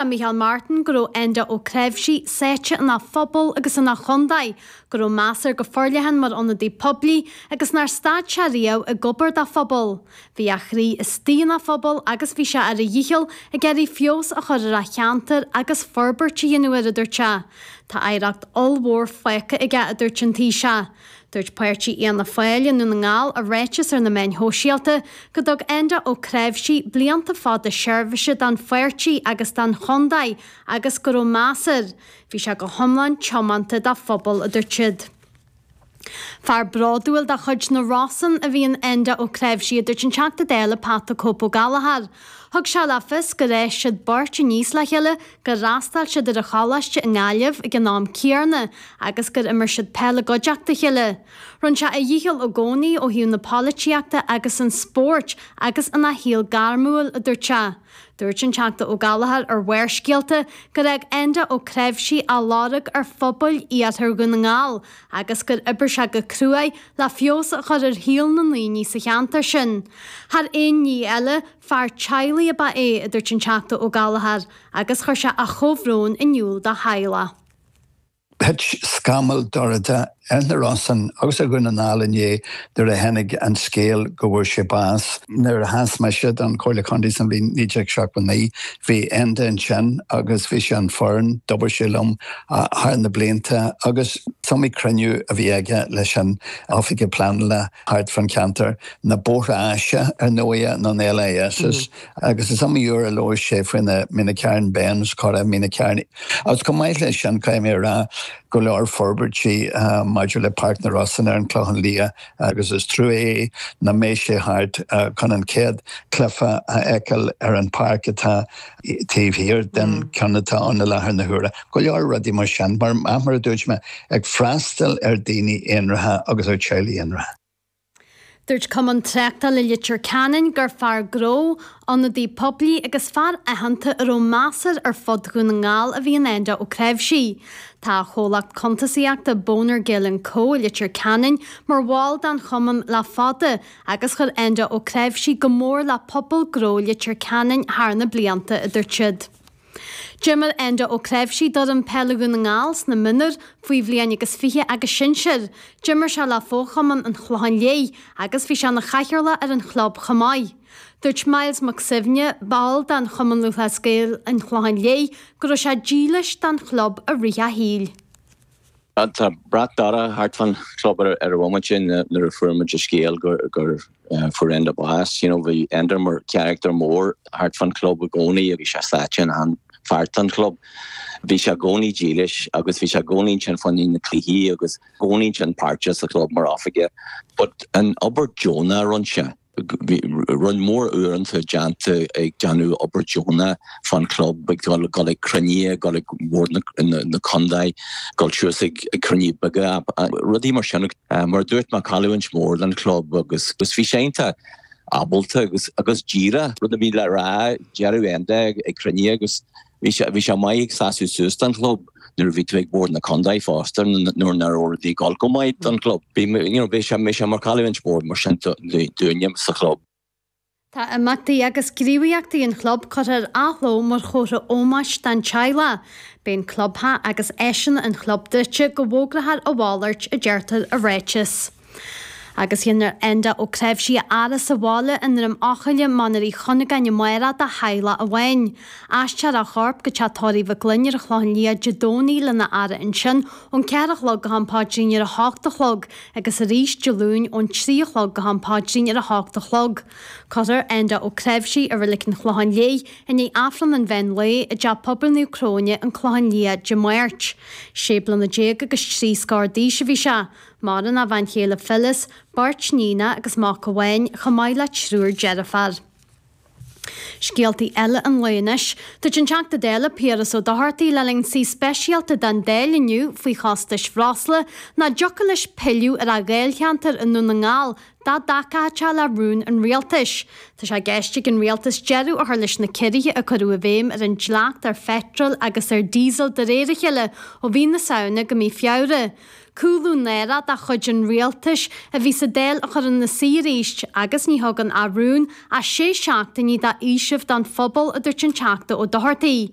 Deir Micheál Martin go raibh Enda Ó Cnáimhsí sáite ina phobal agus ina chontae, go raibh meas air go forleathan mar ionadaí poiblí agus nár stad sé riamh ag obair dá phobal. Bhí a chroí istigh ina phobal agus bhí sé ar a dhícheall ag iarraidh feabhas a chur ar a cheantar agus forbairt a dhéanamh air, a dúirt sé. Tá oidhreacht ollmhór fágtha aige, a dúirt an Taoiseach. Dúirt páirtí Fhianna Fáil i nDún na nGall i ráiteas ar na meáin shóisialta go dtug Enda Ó Cnáimhsí blianta fada seirbhise don pháirtí agus don chontae agus go raibh meas air. Bhí sé go hiomlán tiomanta dá phobal, a dúirt siad. Fear bródúil de chuid na Rosann a bhí in Enda Ó Cnáimhsí, a dúirt an Teachta Dála Pat the Cope Ó Gallchóir. Thug sé le fios gur fhás siad beirt aníos le chéile gur fhreastail siad ar an choláiste i nGaillimh ag an am céarna agus gur imir siad peil i gcuideachta a chéile. Rinn sé a dhícheall i gcónaí ó thaobh na polaitíochta agus an spóirt agus ina shaol gairmiúil, a dúirt sé. Dúirt an Teachta Ó Gallchóir ar Bharrscéalta gur fhág Enda Ó Cnáimhsí a lorg ar phobail iarthar Dhún na nGall agus gur oibir sé go cruaidh le feabhas a chur ar shaol na ndaoine sa cheantar sin. Thar aon ní eile, Fear teaghlaigh ab ea é, a dúirt an Teachta Ó Gallchóir agus chuir sé a chomhbhrón in iúl dá theaghlach. Thit scamall dorcha ar na Rosann agus ar Dhún na nGall inné nuair a tháinig an scéal go bhfuair sé bás. Nuair a sheas mise don Chomhairle Contae sa bhliain 1979, bhí Enda ansin agus bhí sé ar an fhoireann, d'oibir sé liom thar na blianta agus is iomaí cruinniú a bhí aige leis an Oifigeach Pleanála. thart fán cheantar, na bóithre áise, ar ndóighe, nó na LIS's, agus is iomaí uair a labhair sé faoi na Meenacarn Bends, cora Mín an Chairn, agus chomh maith leis sin, caithfidh mé a rá, go leor forbairtí maidir le Páirc na Rosann ar an gClochán Liath, agus is trua é nach mbeidh sé thart chun an chéad chluiche a fheiceáil ar an bpáirc atá taobh thiar den cheann atá ann i láthair na huaire. Go leor rudaí mar sin, mar a dúirt mé, ag freastal ar dhaoine aonraithe agus ar theaghlaigh aonraithe. Dúirt Cumann Tráchtála Leitir Ceanainn gur fear gnó, ionadaí poiblí agus fear aitheanta a raibh meas air ar fud Dhún na nGall a bhí in Enda Ó Cnáimhsí. Tá a chomhlacht cuntasaíochta Bonner Gill and Co i Leitir Ceanainn mar bhall den Chumann le fada agus chuir Enda Ó Cnáimhsí go mór le pobal gnó Leitir Ceanainn thar na blianta, a dúirt siad. D'imir Enda Ó Cnáimhsí d'fhoireann peile Dhún na nGall sna mionúir, faoi bhliain agus fiche agus sinsir, d'imir sé le fochumann an Chlocháin Léith agus bhí sé ina chathaoirleach ar an chlub chomh maith. Dúirt Myles Mac Suibhne, ball den Chumann Lúthchleas Gael an Chlocháin Léith, go raibh sé dílis don chlub i rith a shaoil. Tá brat dorcha thart fán chlub ar an bhomaite sin nuair a fuair muid an scéal gur fuair Enda bás. You know, bhí Enda mar charachtar mór thart fán chlub i gcónaí, bhí sé sáite in achan pháirt den chlub. Bhí sé i gcónaí dílis agus bhí sé i gcónaí ansin fá na cluichí agus i gcónaí ansin páirteach sa chlub mar oifigeach. But an obair deonach a rinne sé. Bhí roinnt mhór uaireanta déanta ag déanamh obair dheonach fán chlub, ag dul ag cruinnithe, ag dul ag bord na condae, ag dul suas ag cruinnithe beaga, rudaí mar sin. Mar a dúirt mé, cailliúint mhór don chlub agus bhí sé iontach ábalta agus díreach. Rud a bhí le rá, déarfadh Enda ag cruinniú agus Bhí sé bhí sé maith ag seasamh suas don chlub nuair a bhí tú ag bord na contae fosta nuair nach raibh rudaí ag dul go maith don chlub. Bhí mé you know bhí sé mé sé mar chailliúint mhór mar sin dúinne sa chlub. Tá imeachtaí agus gníomhaíochtaí an chlub curtha ar athló mar chomhartha ómóis don teaghlach. Beidh an clubtheach agus áiseanna an chlub druidte go bhfógrathar a mhalairt, a deirtear i ráiteas. agus dhéanfar Enda Ó Cnáimhsí a fhaire sa bhaile i nDroim Eochaille, Mainéar Uí Chuinneagáin amárach dá theaghlach amháin. Aistreofar a chorp go teach tórraimh Mhig Fhloinn ar an Chlochán Liath Dé Domhnaigh lena fhaire ansin ón cheathair a chlog go ham paidrín ar a hocht a chlog agus arís Dé Luain ón trí a chlog go ham paidrín ar a hocht a chlog. Cuirfear Enda Ó Cnáimhsí i Reilig an Chlocháin Léith i ndiaidh Aifreann an Mheán Lae i dTeach Pobail Naomh Cróine, An Clochán Liath, Dé Máirt. Sé bliana déag agus trí scór d'aois a bhí sé. Maireann a bhean chéile Phyllis, beirt níonacha agus mac amháin, chomh maith le triúr deirféar. Scéalta eile an lae anois. Dúirt an Teachta Dála Piaras Ó Dochartaigh le linn suí speisialta den Dáil inniu faoi chostais bhreosla nach dtiocfadh leis pilleadh ar a Dháilcheantar i nDún na nGall dá dtacódh sé le rún an Rialtais. Tá sé i gceist ag an Rialtas deireadh a chur leis na ciorruithe a cuireadh i bhféidhm ar an dleacht ar pheitreal agus ar díosal de réir a chéile ó mhí na Samhna go mí Feabhra. Cúlú náireach de chuid an rialtais a bhí sa Dáil a chur ina suí arís agus ní thugann ár rún ach sé seachtainí de fhaoiseamh don phobal, a dúirt an Teachta Ó Dochartaigh.